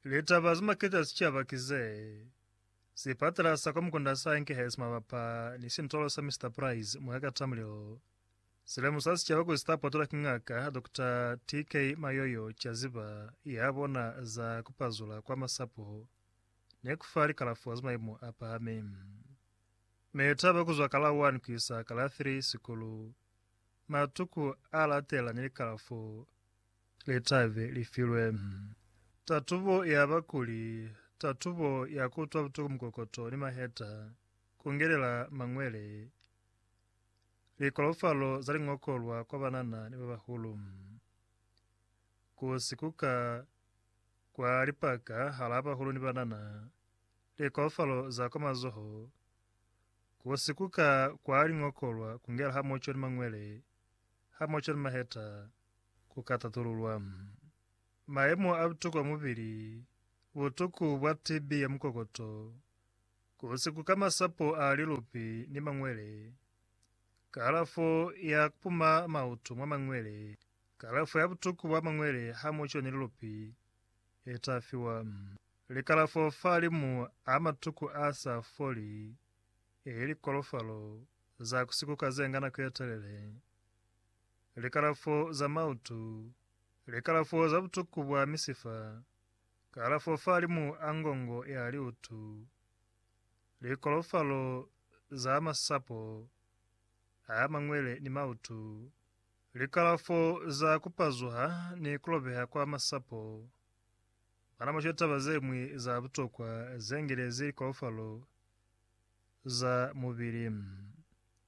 Litaba ze maketa sicaba ki ze, Sipatala sa kwa Mukunda sa Enkehesi mabapa ni sintolo sa Mister Price mwa ka ta mulilo. Si lemusa sicaba kuli sita potolwa ki Ngaka Dokota TK Mayoyo caziba ya bona za ku pazula kwa masapo ni ku fa likalafo za maimu a pahami. Mitaba ku zwa ka la 1 ku isa ka la 3 sikulu, matuku a latela ni likalafo Litabe li filwe. Tatubo ya bakuli, tatubo ya kutwa butuku mukokoto ni maheta, kungelela mangwele, likolofalo za lingokolwa kwa banana ni babahulu, ku sikuka kwa lipaka halaa bahulu ni banana, likolofalo za kwa mazoho, ku sikuka kwa lingokolwa kungela hamoco ni mangwele, hamoco ni maheta, Ku ka tatululwa mayemo a butuku a mubili, butuku bwa TB ya mukokoto, ku sikuka masapo a lilupi ni mangwele, kalafo ya kupuma mautu mwa mangwele, kalafo ya butuku bwa mangwele ha mu coni lilupi, i ta fiwa. Likalafo fa limu a matuku a sa foli, ili kolofalo za ku sikuka ze nga nako ye telele. likalafo za mautu, likalafo za butuku bwa misifa, kalafo fahalimu a ngongo ya liutu, likolofalo za masapo a mangwele ni mautu, likalafo za kupazuha ni kulobeha kwa masapo. Bana basho taba zeñwi za butokwa zengelezi likolofalo za mubili.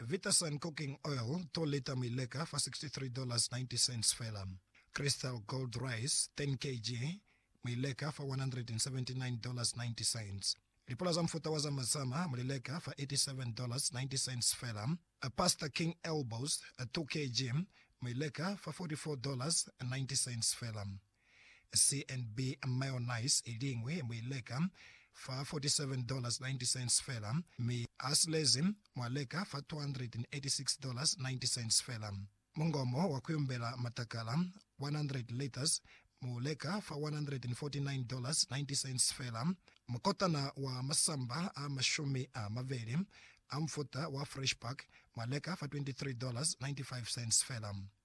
Viterson Cooking Oil to lita mu i leka fa $63.90 fela. Crystal Gold Rice 10 kg mu i leka fa $179.90. Lipula za mufuta wa zama zama mu li leka fa $87.90 fela. Pasta King Elbows 2 kg mu i leka fa $44.90 fela. CNB mayonnaise i liñwi mu i leka fa $47.90 fela, mi asilezi mwa leka fa $286.90 fela. Mungomo wa kuyumbela matakala, 100 litres, mu leka fa $149.90 fela. Mukotana wa masamba a mashumi a mabeli a mufuta wa Fresh Pack mwa leka fa $23.95 fela.